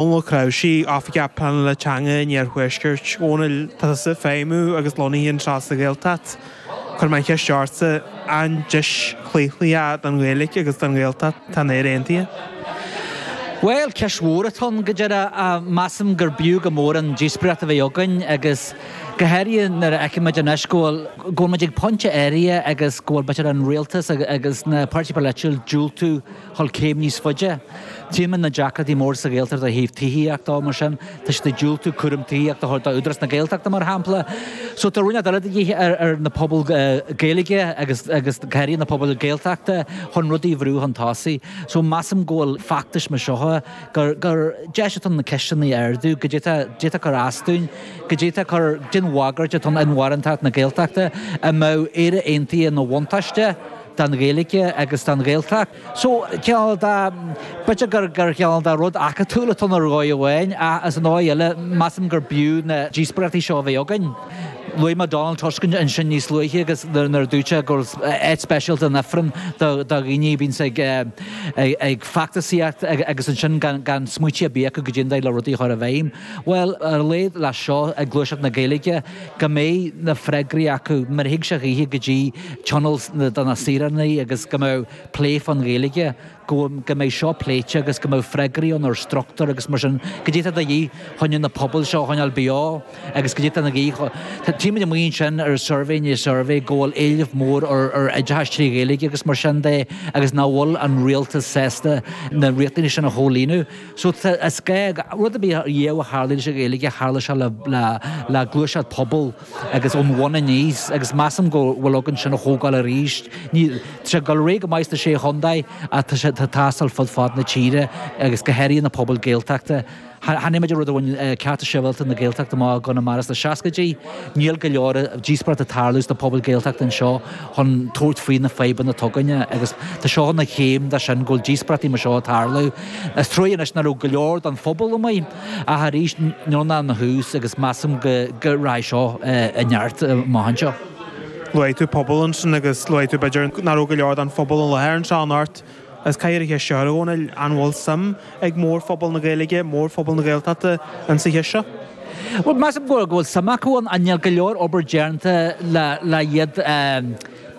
Dónall Ó Cnáimhsí, Oifigeach Pleanála Teanga an Iarthuaiscirt. Dhónaill, tá tusa ag feidhmiú agus lonnaithe anseo sa Ghaeltacht. Cuirfidh mé an cheist ortsa, an deis chlaochlaithe don Ghaeilge agus don Ghaeltacht atá in Éire Aontaithe? Bhuel, ceist mhór atá ann, go díreach. Measaim gur b'fhiú go mór an díospóireacht a bheith againn agus go háirithe nuair a fheicimid anois go bhfuil, go bhfuil muid ag pointe áirithe agus go bhfuil b'fhéidir an rialtas agus na páirtithe polaitiúla ag diúltú, dhul céim níos faide. Tímid na deacrachtaí móra sa Ghaeltacht ó thaobh tithíochta, mar sin tá siad ag diúltú cúram tithíochta a thabhairt do Údarás na Gaeltachta mar shampla. So tá rinneadh eile de dhíth ar ar na pobail Gaeilge agus agus go háirithe na pobail Gaeltachta chun rudaí a bhrú chun tosaigh. So measaim go bhfuil feachtais mar seo gur gur deis atá ann na ceisteanna a ardú cad é a d'fhéadfadh d'fhéadfadh cur as dúinn, cad é a d'fhéadfadh cur den bhagairt atá ar inmharthanacht na Gaeltachta an mbeadh Éire Aontaithe ina bhuntáiste. don Ghaeilge agus don Ghaeltacht. So cineál de, b'fhéidir gur gur cineál de rud acadúil atá ann ar dhóigh amháin ach ar an dóigh eile measaim gur b'fhiú na díospóireachtaí seo a bheith againn. Luaigh mé Donald Tusk ansin níos luaithe agus nuair a dúirt sé go raibh áit speisialta in Ifreann do do dhaoine a bhíonns ag ag feachtasaíocht agus ansin gan gan smaoitiú ar bith acu cad é an dóigh le rudaí a chur i bhfeidhm. Bhuel, ar a laghad leis seo ag gluaiseacht na Gaeilge go mbeidh na freagraí acu má thig sé a choíche go dtí tionól do na saoránaigh agus go mbeadh plé fán Ghaeilge, go mbeidh seo pléite agus go mbeadh freagraí ann ar struchtúr agus mar sin cad é atá de dhíth chun na pobail seo a choinneáil beo agus cad é atá de dhíth. Tímid amuigh ansin ar suirbhé i ndiaidh suirbhé go bhfuil éileamh mór ar oideachas trí Ghaeilge agus mar sin de agus nach bhfuil an rialtas sásta na riachtanaisí sin a chomhlíonadh. So rud ar bith riamh a tharla sa Ghaeilge, tharla sé le gluaiseacht pobail agus ón bhun aníos agus measaim go bhfuil againn sin a thógáil arís. Tá sé ag dul ar aghaidh go maith sna Sé Chontae ach tá sé ag teastáil fud fad na tíre agus go háirithe na pobail Gaeltachta. Chonaic muid an rud a bhain Cearta Sibhialta na Gaeltachta amach i gConamara sna seascaidí. Níl go leor díospóireachta ag tarlú sna pobail Gaeltachta anseo. chun tabhairt faoi na fadhbanna atá againn agus tá seo ina chéim de sin go bhfuil díospóireachtaí mar seo ag tarlú. Is truaighe anois nach raibh go leor den phobal amuigh ach arís níl ann ach tús agus measaim go rachaidh seo i neart amach anseo. Luaigh tú pobal ansin agus luaigh tú b'fhéidir nach raibh go leor den phobal i láthair anseo anocht. Is cathaoir é seo a Dhónaill an bhfuil suim ag mórphobal na Gaeilge, mórphobal na Gaeltachta insa cheist seo? Bhuel, measaim go bhfuil suim acu ann, ach níl go leor obair déanta le iad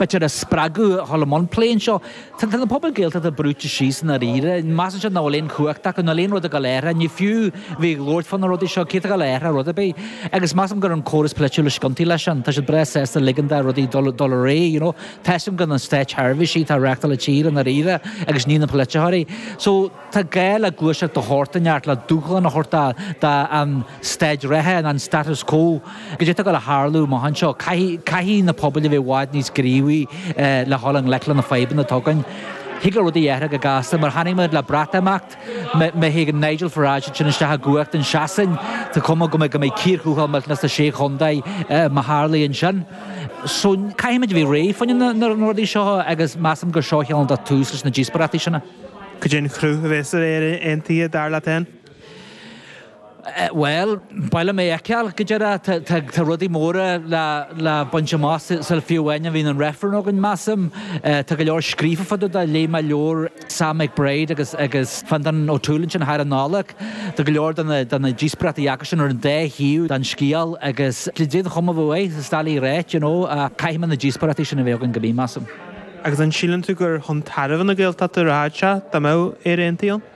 b'fhéidir a spreagadh a dhul i mbun plé anseo? Tá na pobail Gaeltachta brúite síos i ndáiríre, measann siad nach bhfuil aon chumhacht acu, nach bhfuil aon rud ag dul a athrú, ní fiú bheith ag labhairt fá na rudaí seo, cé atá ag dul a athrú rud ar bith? Agus measaim gurb é an córas polaitiúil is ciontaí leis sin, tá siad breá sásta ligean do rudaí dul dul ar aghaidh, you know. feicim gurb iad na státseirbhísigh atá ag reáchtáil na tíre i ndáiríre agus ní na polaiteoirí. So tá gá le gluaiseacht de shórt ínteacht le dúshlán a thabhairt don staid reatha nó an status quo. Cad é atá ag dul a tharlú amach anseo caithfidh caithfidh na pobail a bheith i bhfad níos gníomhaí le dhul i ngleic le na fadhbanna atá againn. Thig le rudaí a athrú go gasta mar a chonaic muid le Breatimeacht, Má théigheann Nigel Farage isteach i gcumhacht i Sasain, tá cuma air go mbeidh cíor thuathail millteanach sna Sé Chontae má tharlaíonn sin. So caithfimid a bheith réidh fá choinne na rudaí seo agus measaim gur seo cheana an tús leis na díospóireachtaí sin. Cad é an cruth a bheas ar Éire Aontaithe dar leat fhéin? Bhuel, b'fhearr liom é fheiceáil, go díreach. Tá rudaí móra le baint amach sula fiú amháin a mbíonn an reifreann againn, measaim. Tá go leor scríofa faoi dtaobh de. Léigh mé leabhar Sam McBride agus Fintan O'Toole ansin thar an Nollaig. Tá go leor de na díospóireachtaí ansin ar an dá thaobh den scéal agus déanann siad chomh maith is atá le ráit, you know, ach caithfidh muid na díospóireachtaí sin a bheith againn go minic, measaim. Agus an síleann tú gur chun tairbhe na Gaeltachta a rachadh sé dá mbeadh Éire Aontaithe ann?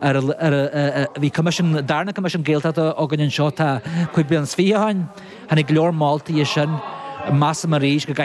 Bhí coimisiún, an darna coimisiún Gaeltachta againn anseo tá cúig bliana is fiche ó shin. Tháinig go leor moltaí as sin. Measaim arís go gcaithfear.